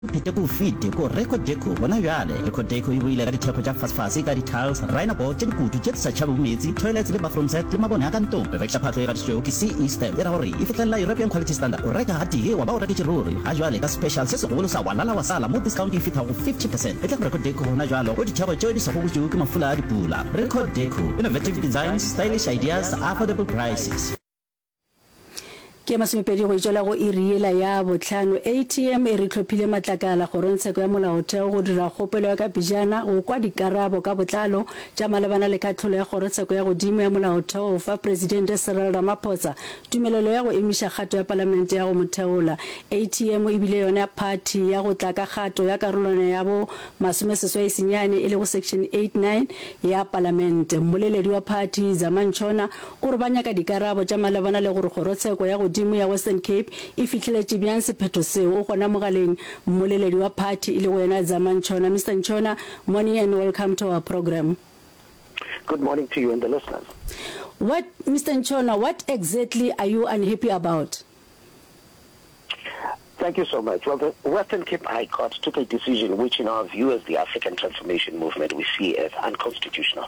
Pete ko o fete ko Record Deco gona bjale. Record Deco e boile ka dithekgo tša fasefase ka di-tiles, rhino board tša dikutu tše di sa tšhabego meetse, toilets le bathroom set le mabone a ka ntlong. Revexa phahlo e gatišitšwego ke CE stamp e ra gore e fihlelela European Quality Standard. O reka gatee wa ba o reketše ruri. Ga bjale ka special se segolo sa Walala wa sala mo discount e fethago 50 percent. Etla go Record Deco gona bjale go dithekgo tšeo di sa gogotšwego ke mafula a dipula. Record Deco, innovative designs, stylish ideas, affordable prices. Ke ya masomepedi go itšela go iri yela ya bohlano ATM e re tlhophile matlakala kgorongtsheko ya molaotheo go dira kgopelo ya ka pejana go kwa dikarabo ka botlalo tša malebana le kahlolo ya kgorotsheko ya godimo ya molaotheo go fa Presidente Cyril Ramaphosa tumelelo ya go emiša kgato ya palamente ya go mo theola. ATM e bile yona phathi ya go tla ka kgato ya karolwana ya bo masomeseswai senyane e lego section 89 ya palamente. Mmoleledi wa phathi Dzamantšhona gore ba nyaka dikarabo tša malebana le gore Kgorotsheko ya Godimo ya Western Cape e fihleletše bjang sephetho seo. O gona mogaleng, mmoleledi wa phathi, e lego yena a zamang Nchona. Mister Nchona, morning and welcome to our program. Good morning to you and the listeners. What, Mister Nchona, what exactly are you unhappy about? Thank you so much. Well, the Western Cape High Court took a decision which, in our view as the African Transformation Movement, we see as unconstitutional.